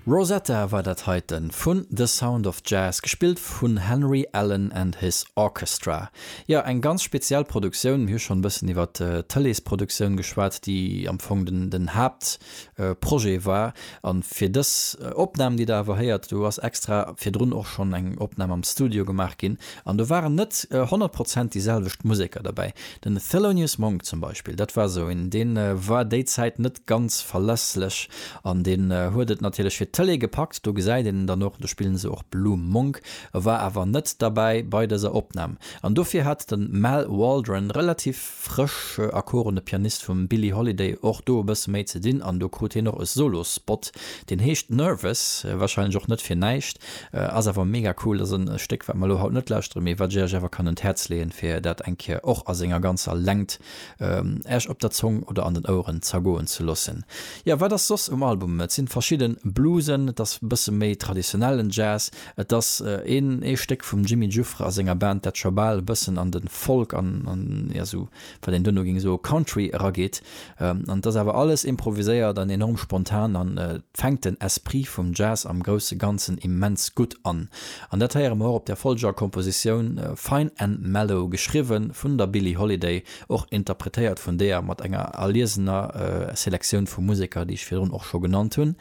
Rosetta war dat heiten vun The Sound of Jazz, gespillt vun Henry Allen and his Orchestra. Jo, eng ganz speziell Produktioun. Mir hu schonn e bëssen iwwer d'Tëleesproduktioun geschwat, déi am Fong den Haaptprojet war. A fir dës Opnam, déi Der awer héiert, do ass extra virdrun och schonn eng Opnam am Studio gemaach ginn, An do waren net honnert Prozent déi selwecht Museker derbäi. Den Thelonious Monk zum Beispill, dat war esou een, dee war déi Zäit net ganz verlässlech an deen huet et natierlech fir d'Tëlee gepackt. Do gesäit een en dann och, do spillen se och Blue Monk. E war awer net derbäi bei dëser Opnam an dofir hat de Mal Waldron relativ. frësch akorene Pianist vum Billie Holiday och do e bësse méi ze dinn an do krut hien och e Solo-Spot, deen heescht Nervous, warscheinlech och net fir näischt. Ass awer mega cool, ass e Stéck wat mer elo haut net lauschtere mee wat ech Iech awer kann un d'Häerz leeën fir dat eng Kéier och a senger ganzer Längt Iech op der Zong oder an den Oueren zergoen ze loossen. Jo, wat ass soss um Album? Et sinn verschidden Bluesen, et ass e bësse méi traditionellen Jazz, Et ass een ee Stéck vum Jimmy Giuffre a senger Band, dat scho bal e bëssen an de Folk an, jo esou wat een duerno géing soe Country erageet. An et ass awer alles improviséiert an enorm spontan an et fänkt den Esprit vum Jazz am grousse Ganzen immens gutt an. An dat héiere mer och op där folgeger Kompositioun, Fine and Mellow, geschriwwe vun der Billie Holiday, och interpretéiert vun deer, mat enger erliesener Selektioun vu Museker, déi ech virdrun och scho genannt hunn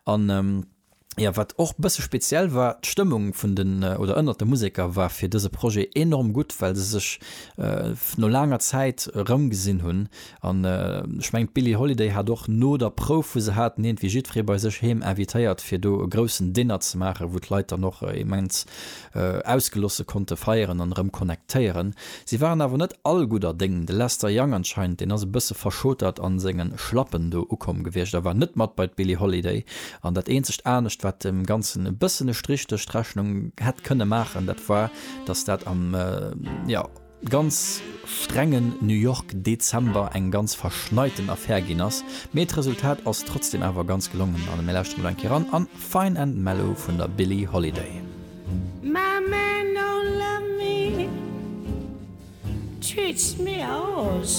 an, jo, wat och bësse speziell war, d'Stëmmung vun den, oder ënnert de Museker war fir dëse Projet enorm gutt, well se sech no laanger Zäit erëmgesinn hunn. An ech mengen, d'Billie Holiday hat och no der Prouf, wou se haten iergendwéi jiddweree bei sech heem invitéiert, fir do e groussen Dinner ze maachen, wou d'Leit dann och immens Ausgelosse konnte feieren an erëm connectéieren. Si waren awer net all gudder Déng. De Lester Young anscheinend, deen ass e bësse verschotert an sengen Schlappen do ukomm gewiescht a war net mat bei d'Billie Holiday. An dat eenzegt anescht, wat dem Ganzen e bëssen e Strich duerch d'Rechnung hätt kënne maachen, dat war, dass dat am, jo, ganz strengen New York Dezember eng ganz verschneiten Affär ginn ass, mee d'Resultat ass trotzdeem awer ganz gelongen an mir lauschteren elo eng Kéier eran an Fine and Mellow vun der Billie Holiday. My man don't love me, treats me awesome.